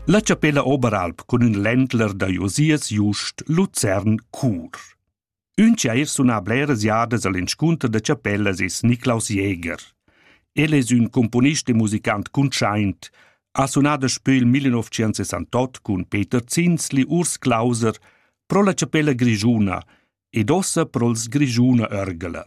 La chapella Oberalp cun ün ländler da Josias Just Luzern cur. Ün chair suna bleras jadas al inscunter da chapellas es Niklaus Jäger. El es ün componist e musicant cuntschaint, ha sunà daspö il 1968 cun Peter Zinsli Urs Clauser pro la chapella grischuna ed ossa pro'ls Grischuna Örgeler.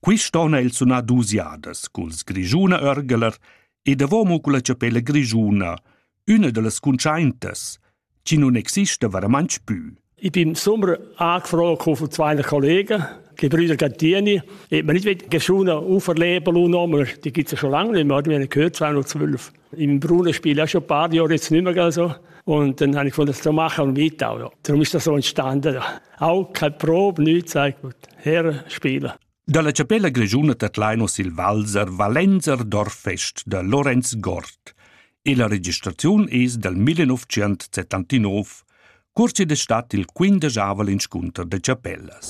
Quist on ha el sunà duos jadas culs Grischuna Örgeler e davomo culla chapella grischuna, üna da las cuntschaintas, chi nun exista varamantsch pü. Ich bin sommer angefragt von zwei Kollegen, die Brüder Gantini, ob man nicht geschunen auferleben lassen, die gibt es ja schon lange nicht mehr, die haben gehört 212. In bruner spielt ja schon ein paar Jahre jetzt nicht mehr so. Und dann habe ich gefunden, das zu machen und weiter. Oder? Darum ist das so entstanden. Auch keine Probe, nichts, sag gut, herspielen. Dalla chapella grischuna Tatlaino sil Walser Valenzerdorf fest da Lorenz Gort. E la registraziun es dal 1979, cursi d'estat il quindegiavel inscunter de chapellas.